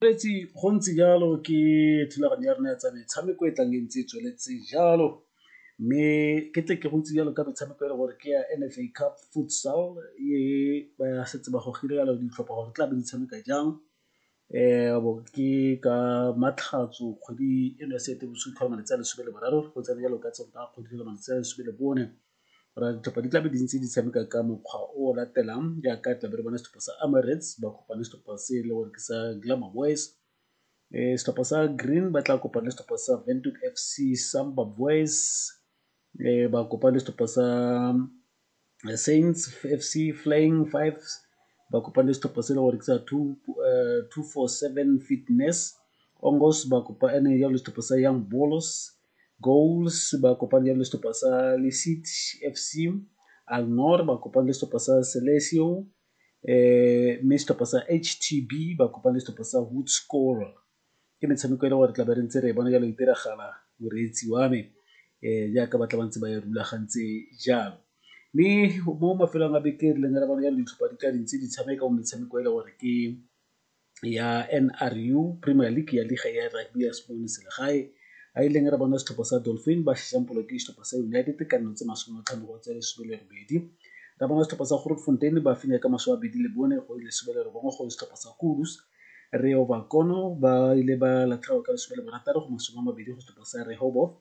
Gontsi go ntse jalo ke thulaganyo ya rona ya tsa metshameko e tlang e ntse e tsweletse jalo, mme ke tle ke go itsise jalo ka metshameko e le gore ke ya N_F_A Cup Futsal e ba setse ba gogile jalo ditlhopha gore di tla be di tshameka jang. Ke ka Matlhatso kgwedi eno ya Seetebosigo tlhola malatsi a lesome le boraro go tsena jalo ka Sontaga kgwedi tlhola malatsi a lesome le bone. Go raya ditlhopha di tlabe di ntse di tshameka ka mokgwa o o latelang jaaka tlabe re bona setlhopha sa Emirates ba kopane setlhopha se e le gore ke sa Glamour Boys, setlhopha sa Green ba tla kopana le setlhopha sa Windhoek FC, Samba Boys ba kopane le setlhopha sa Saints FC, Flying Fives ba kopane le setlhopha se e le gore ke sa Two Four Seven Fitness, ba kopane jalo le setlhopha sa Young Bolos, Gauls ba kopane jalo le setlhopha sa Lesit FC, Alnor ba kopane le setlhopha sa Celesio um mme setlhopha sa HTB ba kopane le setlhopha sa Hoedskoorl. Ke metshameko e le gore re tla be re ntse re e bona jalo e diragala moreetsi wa me um jaaka ba tla ba ntse ba e rulagantse jalo. Mme mo mafelong a beke re leng re bona jalo ditlhopha di tla dintse di tshameka mo metshameko e le gore ke. ya N_R_U premier league ya liga ya rugby ya selegae a e leng re bona setlhopha sa Dolfin ba ke setlhopha sa United ka nno tse masome a matlhano go tse lesome le robedi. Re bona setlhopha sa Grootfontein ba fenya ka masome a mabedi le bone go lesome le robongwe go setlhopha sa Kudus. Rehoboth Kono ba ile ba latlhegelwa ka lesome le borataro go masome a mabedi go setlhopha sa Rehoboth.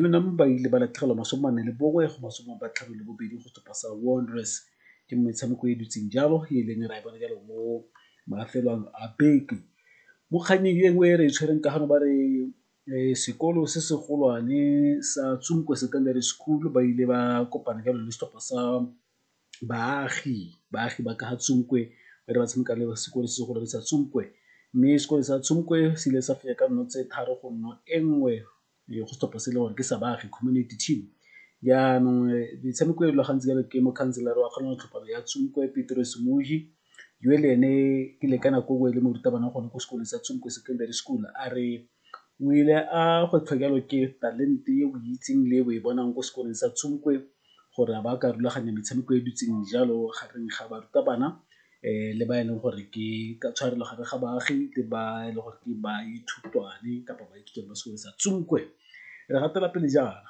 UNAM ba ile ba latlhegelwa masome mane le bongwe go masome a batlhano le bobedi go sepa sa Wanderers ke mo metshameko e dutseng jalo e e leng ra e bona jalo mo mafelong a beke. Mo kgannyeng e nngwe e re e tshwereng ka gano ba re sekolo se se golwane sa Tsunko Secondary School ba ile ba kopana jalo le setlhopha sa baagi ba ka ga Tsonkwe ba ne ba tshameka le sekole se se golwane sa Tsonkwe mme sekole sa Tsonkwe se ile sa fenya ka nno tse tharo go nno e nngwe go setlhopha se e le gore ke sa baagi community team. Jaanong metshameko e e rulagantsweng jalo ke mokhanselara wa kgaolo ya tlhopana ya Tsonkwe Petros Moji yo le ene ke le ka nako nngwe e le morutabana gone ko sekolong sa Tsonkwe Secondary School a re O ile a go tlhokelwa ke talente e o e itseng le e o e bonang ko sekolong sa gore a ba ka rulaganya metshameko e dutseng jalo gareng ga barutabana le ba e leng gore ke ka tshwarelo gare ga baagi le ba e le gore ke baithutwane kapa baithuti ba sekolo sa re gatela pele jaana.